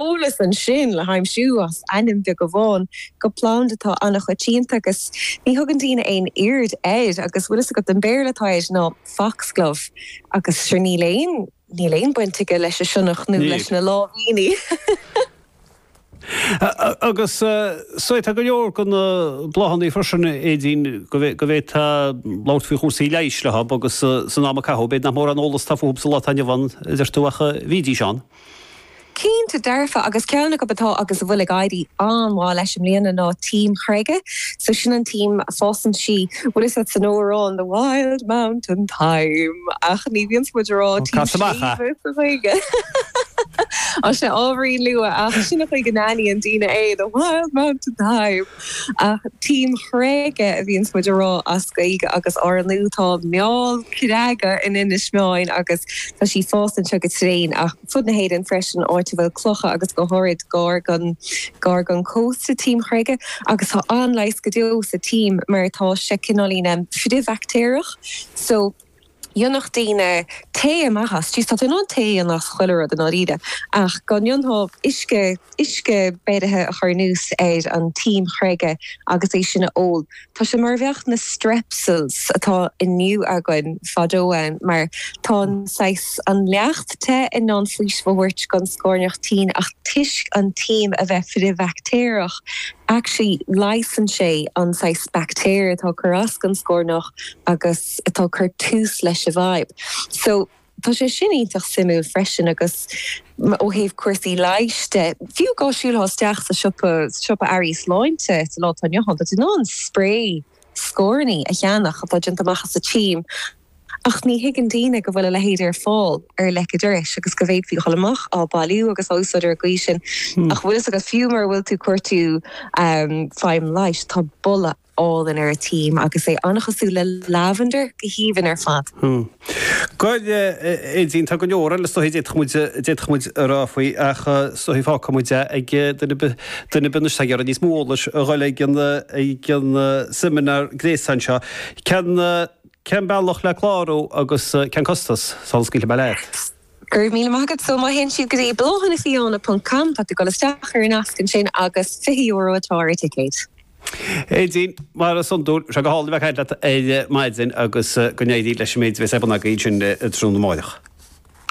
eolas ansin le haimsiú as ainm beag amháin do phlanda atá an-choitianta agus ní thugann daoine aon aird air agus bhfuil fhios agat an Béarla atá air ná Foxglove agus sure níl aon, níl aon baint aige leis an sionnach nó leis na láimhíní! Agus sea, tá go leor de na bláthannaí freisin a Aedín go, go bhféadfá labhairt faoi chúrsaí leighis leo agus san am a caitheadh b'fhéidir nach mórán eolas atá fúthu sa lá atá inniu ann a deir tú ach bhídís ann. Cinnte dearfa, agus ceann acu atá agus a bhfuil ag éirí an-mhaith leis i mbliana ná tím chreige, so sin an tím, fásann sí, bhfuil fhios agat san amhrán the wild mountain thyme ach ní bhíonns muid a rá tím sléibhe sa Ghaeilge! Sea, ábhairín luath ach sin an chaoi go n-aithníonn daoine é, the wild mountain thyme! Ach tím chreige a bhíonns muid a rá as Gaeilge agus ar ndóigh tá meall creaga in Inis Meáin agus tá sí ag fás anseo go tréan ach ar fud na hÉireann freisin áit a bhfuil clocha agus go háirid gar don, gar don chósta, tím chreige agus tá an-leigheas go deo sa tím mar tá sé cineáilín frithbhaictéarach so dhéanfadh daoine tae amach as, jeez, tá tú in ann tae a dhéanamh as chuile rud i ndáiríre, ach go ndéanfadh uisce, uisce beirithe a chur anuas ar an tím chreige agus é sin a ól. Tá sé mar a bheadh na strepsils atá inniu againn fadó ann, mar tá an saghas, an leacht te in ann faoiseamh a thabhairt don scornach tinn ach toisc an tím a bheith frithbhaictéarach, actually leigheasann sé an saghas baictéir atá ag cur as don scornach agus. atá ag cur tús leis an bhfadhb. So, tá sé sin iontach suimiúil freisin agus ó thaobh cúrsaí leighis de, fiú dhá siúlfá isteach sa siopa, siopa earraí sláinte sa lá atá inniu ann, tá tú in ann sprae scornaí a cheannach atá déanta amach as an tím ach ní thuigeann daoine go bhfuil a leithéid ar fáil ar leic an dorais agus go bhféadfaí a dhul amach á bhailiú agus á úsáid ar an gcaoi sin ach bhfuil fhios agat, fiú mura bhfuil tú ag cuartú feidhm leighis, tá boladh. álainn ar an tím agus é an-chosúil le lavender go haoibhinn ar fad. Bhuel Aedín, tá go leor eile is dóichí a d'fhéadfadh muid a rá faoi ach is dóichí fágfaidh muid é ag duine ar bith, duine ar bith anois atá ag iarraidh níos mó eolais a dhul ag an seimineár gréasáin seo. Cén bealach le clárú agus cén costas? Sula scaoilfidh mé leat. Go raibh míle maith agat. So má théann siad go dtí bláthannafiáine ponc com, tá tú ag dul isteach ar an nasc ansin agus €20 atá ar an ticéad. Aedín, mar is iondúil, sé go hálainn a bheith ag caint leat ar maidin agus go n-éirí leis an méid a bheas ar bun agaibh ansin tráthnóna amárach.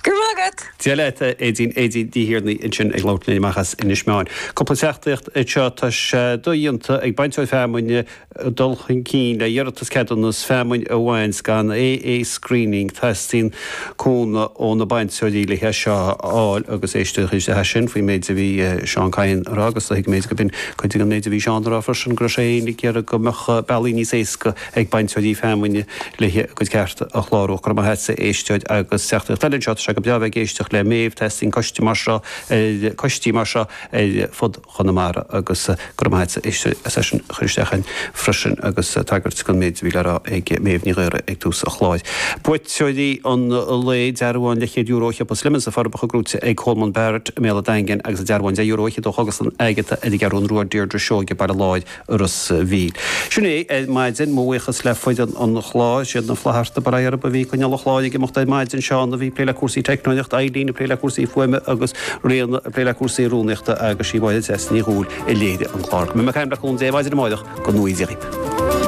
Go raibh maith agat. Dia leat, a Aedín, Aedín Ní Thiarnaigh ansin ag labhairt linn amach as Inis Meáin. Cúpla teachtairacht anseo, tá sé dodhéanta ag bainteoir feamainne dul chun cinn le iarratas ceadúnas feamainn a bhaint gan AA screening, teastaíonn cúnamh ó na bainteoirí le hé seo a fháil agus éisteoidh le hais sin faoin méid a bhí Seán Kyne a rá agus tuigimid go binn cuid de an méid a bhí Seán a rá freisin go raibh sé féin ag iarraidh go mbeadh bealaí níos éasca ag bainteoirí feamainne le a gcuid cearta a chlárú. Go raibh maith agatsa, éisteoir agus teachtaireacht eile anseo, tá sé go breá bheith ag éisteacht le Méabh, teastaíonn coiste mar seo nó coistí mar seo ar fud Chonamara agus go raibh maith agat as é sin a chur isteach chugainn freisin agus tagairt don méid a bhí le rá ag Méabh Ní Ghaora ag tús an chláir. Buaiteoirí an lae, dearbhán le céad euro do shiopa Slemon sna Forbacha gnóite ag Colman Barrett i mBéal a' Daingin agus an dearbhán deich euro fhichead do Chógaslann Agatha ar an gCeathrú Rua Deirdre Seoige Baile Láir Ros an Mhíl. Sin é ar maidin, mo bhuíochas le foireann an chláir, is iad na Flaithearta Bar arb a bhí ag coinneáil an chláir ag imeacht ar maidin, Seán a bhí ag plé le cúrsaí teicneolaíocht, Eileen ag plé le cúrsaí fuaime agus Ríona ag plé le cúrsaí rúnaíochta agus sí Máire Treasa Ní Dhubhghaill a léirigh an clár. Beidh mé ag caint libh le cúnamh Dé maidin amárach go ngnóthaí Dia dhaoibh.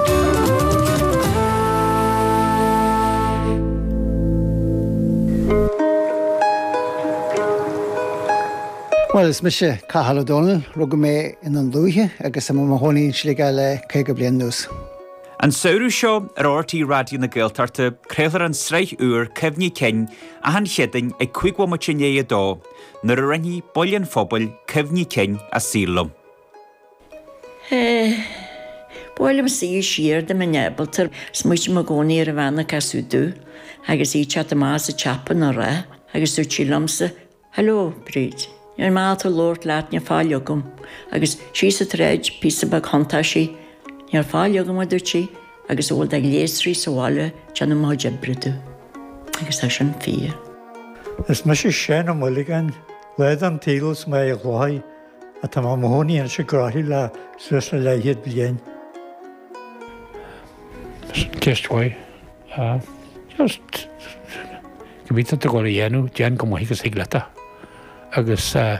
Bhuel, is mise Cathal Ó Dónaill. Rugadh mé i nDún Lúiche agus tá mé i mo chónaí i Sligeach le caoga bliain anuas. An samhradh seo ar RTÉ Raidió na Gaeltachta craolfar an tsraith úr Cuimhní Cinn achan Chéadaoin ag cúig bhomaite i ndiaidh a dó nuair a roinnfidh baill an phobail cuimhní cinn a saoil liom. Bhuail an saol siar dom i nGiobraltar. Is muid inár gcónaí ar an Bhanna Casutu agus í te go maith as a teacht ina rath agus dúirt sí liomsa Hello, Bríd. Níor mhaith tú labhairt leat, ní raibh faill agam. Agus síos an tsráid, píosa beag thiontaigh sí, Ní raibh faill agam, a dúirt sí, agus a bhfuil de ghléasraí sa bhaile ag déanamh mo chuid oibre domh. Agus tá sin fíor. Is mise Seán Ó Maolagáin, lá den tsaol as Machaire Chlochair, atá i mo chónaí anois i gCroithlí le suas le leathchéad bliain. Sin ceist mhaith. Sea. Just, cibé atá tú ag dul a dhéanamh, déan chomh maith agus a thig leat é. Agus eh.